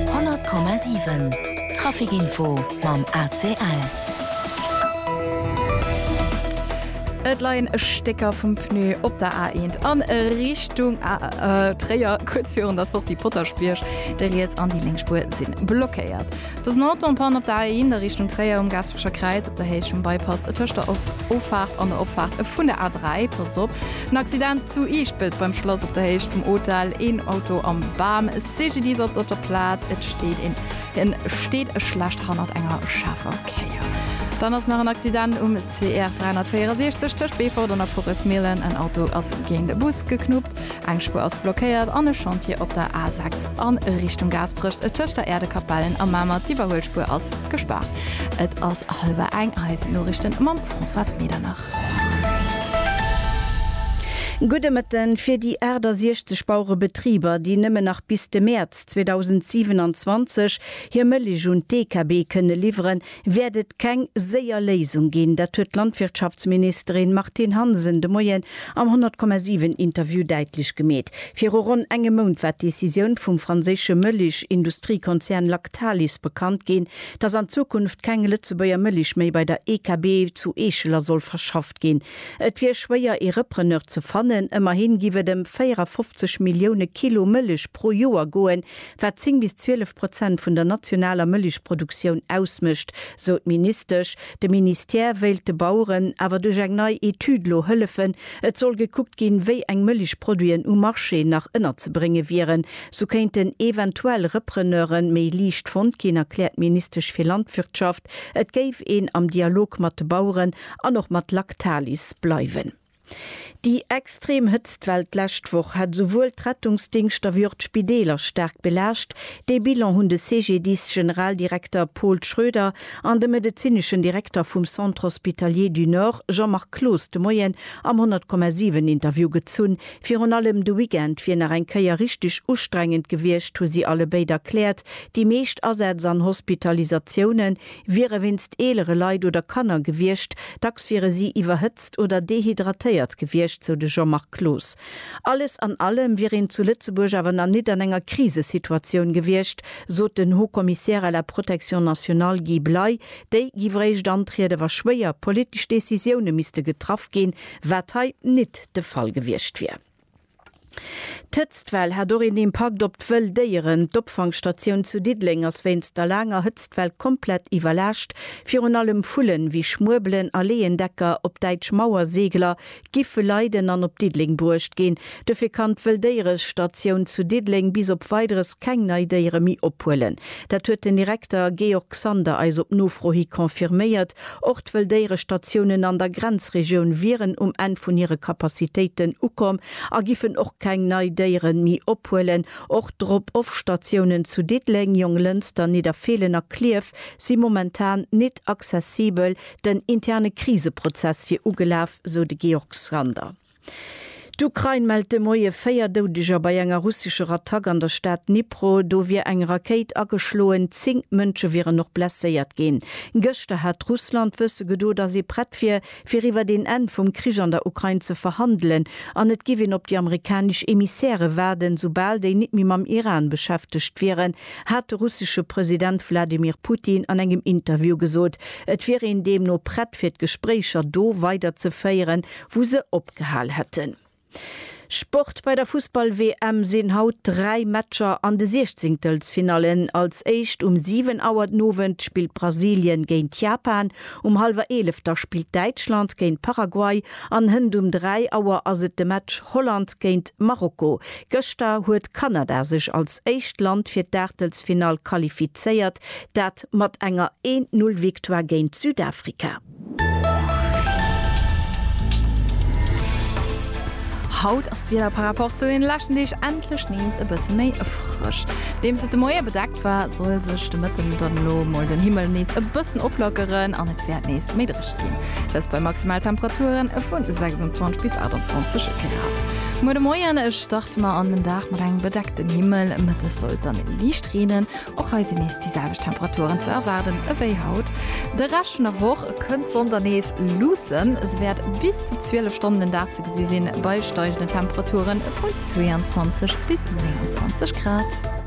100,7 Trafic Info mam ACL. Et leien Stécker vum Pneu op der A1 a Richtung Tréier. Kuerz virun der Sortie Potaschbierg, déi riets an déi lénk Spuer si blockéiert. Et ass en Auto en Panne op der A1 a Richtung Tréier um Gaasperecher Kräiz op der Héicht vum Bypass tëscht der Offaart an der Opfaart vun der A3. Passt op! En Accident zu Iischpelt beim Schlass op der Héicht vum Hotel, een Auto am Bam. CGDISatz op der Plaz, et steet een en steet schlecht hannert enger schaarfer Kéier. Dann ass nach en Accident um. CR 364 tëscht Beefort an der Forêts-Mielen, en Auto ass géint e Bus geknuppt, eng Spuer ass blockéiert an e Chantier op der A 6 a Richtung Gaasperech tëscht der Äerdekapellen a Mamer, d'Iwwerhuelspuer ass gespaart. Et ass hallwer eng. Eis Noriichten mam Françoise Medernach. Gudde Mëtten. Fir déi 68 Bauerebetriber, déi nëmmen nach bis de Mäerz 2027 hir Mëllech un d'EKB kënne liwweren, wäert et keng séier Léisung ginn. Dat huet d'Landwirtschaftsministerin Martine Hansen de Moien am 100,7 Interview däitlech gemeet. Viru ronn engem Mount war d'Decisioun vum franséische Mëlich-Industriekonzern Lactalis bekannt ginn, datt an Zukunft keng Lëtzebuerger Mëlich méi bei der EKB zu Eescheler soll verschafft ginn. Et wier schwéier ee Repreneur ze fannen, ëmmerhi giff et ëm 54 Millioune Kilo Mëlich pro Joer goen, wat 10 bis 12 Prozent vun der nationaler Mëllechproduktioun ausmécht, sou d'Ministesch. De Ministère wéilt de Baueren awer duerch eng nei Etüd elo hëllefen. Et soll gekuckt ginn, wéi eng Mëllechproduiten um Marché nach ënnerzebrénge wieren. Sou kéinten eventuell Repreneure méi liicht fonnt ginn, erkläert d'Ministesch fir Landwirtschaft. Et géif een am Dialog mat de Baueren an och mat Lactalis bleiwen. Déi extrem Hëtztwell d'lescht Woch hat esouwuel d'Rettungsdingschter wéi och d'Spideeler staark belaascht. Dee Bilan hunn de CGDIS-Generaldirekter Paul Schroeder an de medezineschen Direkter vum Centre Hospitalier du Nord Jean-Marc Cloos de Moien am 100,7 Interview gezunn. Virun allem de Weekend wier nach eng Kéier richteg ustrengend gewiescht, hu si allebéid erkläert. Déi meescht Asätz an Hospitalisatiounen Wiere wéinst eelere Leit oder Kanner gewiescht, dacks wiere si iwwerhëtzt oder dehydratéiert gewiescht, sou de Jean-Marc Cloos. Alles an allem wier een zu Lëtzebuerg awer nach nit an enger Krisesituatioun gewiescht, sot den Haut Commissaire à la Protection nationale Guy Bley. Déi giff réischt antriede wa schwéier politesch Decisioune misste getraff ginn, wat hei nit de Fall gewiescht wier. D'Hëtztwell hat och een Impakt op d'wëll Déieren. D'Opfangstatioun zu Diddeleng ass wéinst der laanger Hëtztwell komplett iwwerlaascht. Virun allem Vullen, wéi Schmuebelen a Leeëndecker, op Däitsch Mauerseegler, giffe leiden an op Diddeleng bruecht ginn. Dofir kann d'Wëlldéierestatioun zu Diddeleng bis op Weideres keng nei Déiere méi ophuelen. Dat huet den Direkter Georg Sander eis op Nofro hi confirméiert. Och d'Wëlldéierestatiounen an der Grenzregioun wieren um Enn vun hire Kapazitéiten ukomm a giffen och keng nei Déieren méi ophuelen. Och d'Drop-off-Statiounen zu Diddeleng, Jonglënster, Nidderfeelen a Klierf si momentan nit accessibel. Den interne Kriseprozess wier ugelaf, sou de Georg Sander. D'Ukrain mellt de Moie véier Doudeger bei enger russescher Attack an der Stad Dnipro. Do wier eng Rakéit ageschloen, zéng Mënsche wieren och blesséiert ginn. Gëschter hat Russland wësse gedo, datt ee prett wier, fir iwwer een Enn vum Krich an der Ukrain ze verhandelen an et giff een op déi amerikanesch Emissäre waarden, soubal déi nit méi mam Iran beschäftegt wieren, hat de russesche President Wladimir Putin an engem Interview gesot. Et wier een deemno prett, fir d'Gespréicher do weiderzeféieren, wou se opgehal hätten. Sport, Bei der Fussball-WM sinn haut dräi Matcher an de Siechzéngtelsfinallen. Als éischt um 7 Auer den Owend spillt Brasilien géint Japan, um hallwer eelef da spillt Däitschland géint Paraguay an hënt um 3 Auer ass et de Match Holland géint Marokko. Gëschter huet Kanada sech als éischt Land fir d'Aachtelsfinall qualifizéiert, dat mat enger Een-Null-Victoire géint Südafrika. Haut ass d'Wieder par rapport zu den leschten Deeg endlech nees e bësse méi frësch. Nodeems et de Moie bedeckt war, soll sech de Mëtten dann elo mol den Himmel nees e bëssen oplockeren an et wäert nees méi dréch ginn. Dëst bei Maximaltemperature vu 26 bis 28 Grad. Muer de Moien starte mer an den Dag mat engem bedeckten Himmel, Mëttes soll et dann liicht reenen Och hei sinn nees déi selwecht Temperaturen ze erwaarden ewéi haut. De Rescht vun der Woch kënnt d'Sonn dann nees luussen, se wäert bis zu 12 Stonnen den Dag ze gesi sinn, bei steigenden Temperature vu 22 bis 29 Grad.